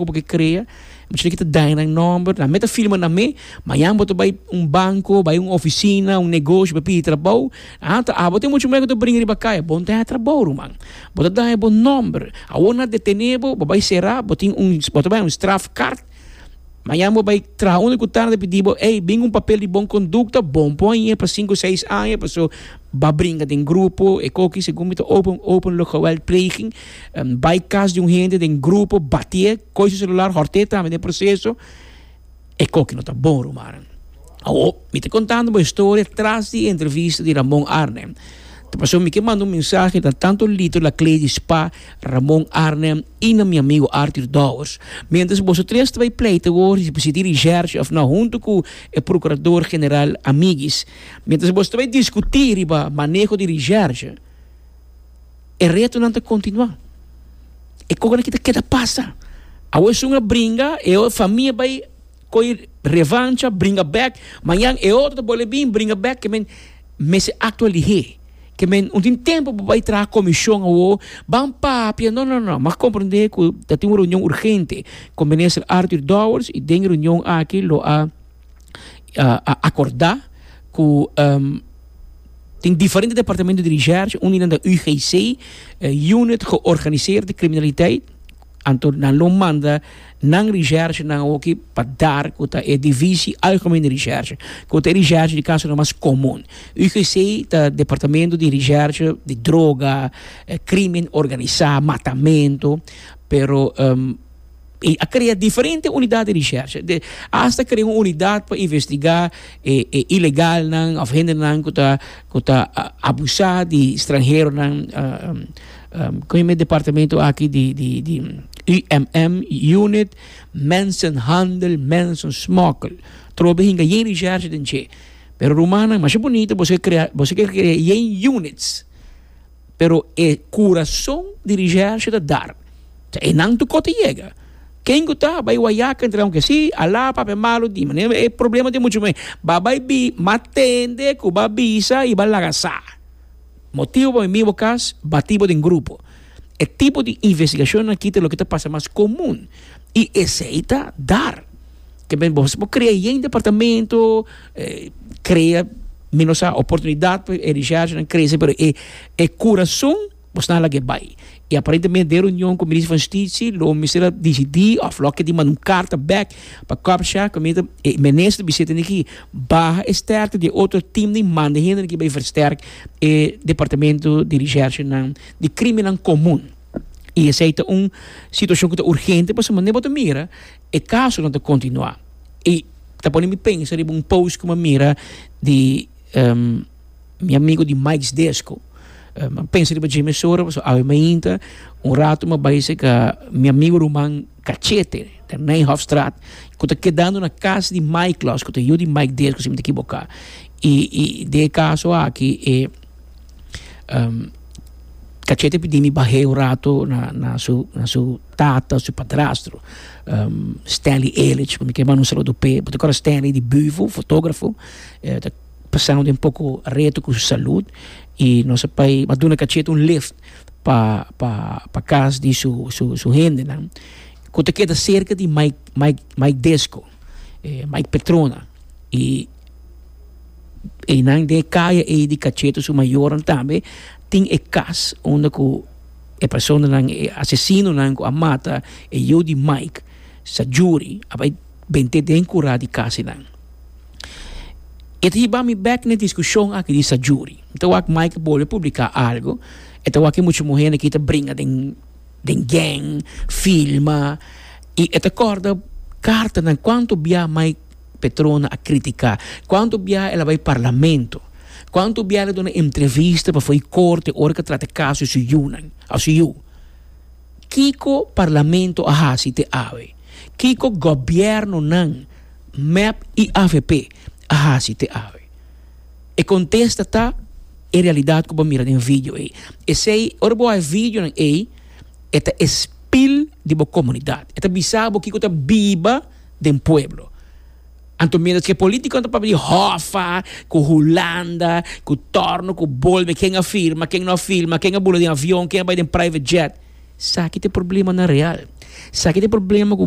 Bo ke krea, bo china kita daña nan nomber, nan me ta firma na me, mañan bo ta bai un banco, bai un oficina, un negoshi pa pidi trabou, ah ta abo tin mucho mer ku ta bringa riba kaya, bo ta daña trabou ruman, bo ta daña bo nomber, awor nan a detene bo, bo bai sera, bo tin un, bo ta bai un straf kart, mañan bo bai traha un lokutan nan ta pidi bo, ey bin ku un papel di bon kondukta, bon por aña pa sinku seis aña, paso. Ba bringa den grupo, ekoki segun mi ta open openlijk geweld pleging, bai kas di un hende den grupo, batié, koi su selular, hòrté tambe den proseso, ekoki no ta bon rumanan. Awo, mi ta kontando bo e storia tras di e entrevista di Ramon Arnem. Ta pasó mi ke manda un mensahe na tantu Lito Laclé di spa, Ramon Arnem i na mi amigo Artur Douwers. Miéntras boso tres ta bai pleita awor si dirigerse òf nò huntu ku e prokurador general Amiguis, Mientras bo sta bay discuti riba maneho di recherche, e retonan ta continua. E coconan aki ta keda pasa. Awe esun a bringa, e otro famia bay coge revancha, bringa bek. Mañan e otro ta bolbe bin bringa bek. Ke men mester actua lihe. Ke men, un tin tempo bo bay traha comision awo, ban papia. No, no, no. M'a comprende cu tatin un reunion urgente cu Minister Arthur Dowers y den e reunion aki lo a. a acorda cu tin diferente departamento di recherche, un di nan ta UGC, e unit georganiseerde criminaliteit, anto nan lo manda nan recherchenan awor pa dar cu ta e divisie algemene recherche, cu ta e recherche di casonan mas comun. UGC ta departamento di recherche di droga, crimen organisa, matamento, pero. E a krea diferente unidat di rishersha, de asta krea un unidat pa investigá e e ilegalnan òf hendenan ku ta ku ta abusá di stranheronan kon yome e departamento aki di di di UMM, Unit Mensenhandel Mensensmokkel. Trobe hinga yen rishersha den dje. Pero rumannan masha bunito boso ke krea boso ke krea yen units. pero e kurason di Rijercio ta dar. Sa e nan tukó ta yega. Ken ku ta bai wayaka entre nan ke si, alá papia e malu di manera e problema di muchu muhé ba bai bi ma tende ku ba bisa i ba laga sa. Motibu pa mi mi bo kas batí bo den grupo. E tipo di investigashonnan akí ta loke ta pasa mas komun i esei ta dar. ke men bos bo krea yen departamento krea mi no sa oportunidat pa e richargenan krese pero e e kurason bos nan lag'e bai i aparentemente den reunion ku Minister van Stichi lo Minister a disidi òf lo a keda manda un karta bèk pa kòpsha ku mester e Minister ta bisita aki baha e stèrkte di e otro teamnan i manda hende aki bai versterk e departamento di richargenan di krimennan komun i esei ta un situashon ku ta urgente pasobra bo ta mira E kasonan ta kontinuá i ta pone mi pensa riba un post ku mi a mira di mi amigu di Mike's Disco. Mi a pensa riba dje mesora pasobra awe mainta un ratu mi a bai serka mi amigu ruman Cachete den Nijhoffstraat ku ta kedando na kas di Mike los ku ta yu di Mike Disco si mi no ta ekiboká. I i den e kaso aki e Cachete a pidi mi bah'é un ratu na na su na su. Tata, su padrastro, Stanley Elich, bo ta manda un saludo p'e. Bo ta kòrda Stanley di Büvo, fotógrafo, e ta pasando den poko reto ku su salud i nos a bai a duna kacheta un lift pa pa pa kas di su su su hendenan ku ta keda serka di Mike Mike Mike Disco, e Mike Petrona i einan den e kaya ei di kacheta su mayornan tambe tin e kas unda ku e personanan, e asesinonan ku a mata e yu di Mike sa juri a bai bent'é den kurá di kasinan. E ta hiba mi bèk na e diskushon aki di sa juri. Mi ta wak Mike a bolbe publiká algu, e ta wak e muchu muhé na kita bringa den den gèng, filma i e ta kòrda kartanan kuantu biaha Mike. Petrona a critica cuanto biaha el a bay parlamento, cuanto biaha el a duna entrevista pafo'i corte ora ke trata caso di su yunan of su yu. Kiko parlamento a haci te awe? Kiko gobiernonan, mep y avp, a haci te awe? E contesta ta e realidad cu bo mira den video ey. Esey, ora bo ha'i videonan ey, e ta e spil di bo comunidad. E ta bisa bo kiko ta biba. den pueblo. Anto miéntres k'e polítikonan ta papia di hòfa, ku Hulanda, ku tòrno, ku bolbe, ken a firma, ken no a firma, ken a bula den avion, ken a bai den private jet, sa ki ta e problemanan real. Sa ki ta e problema ku.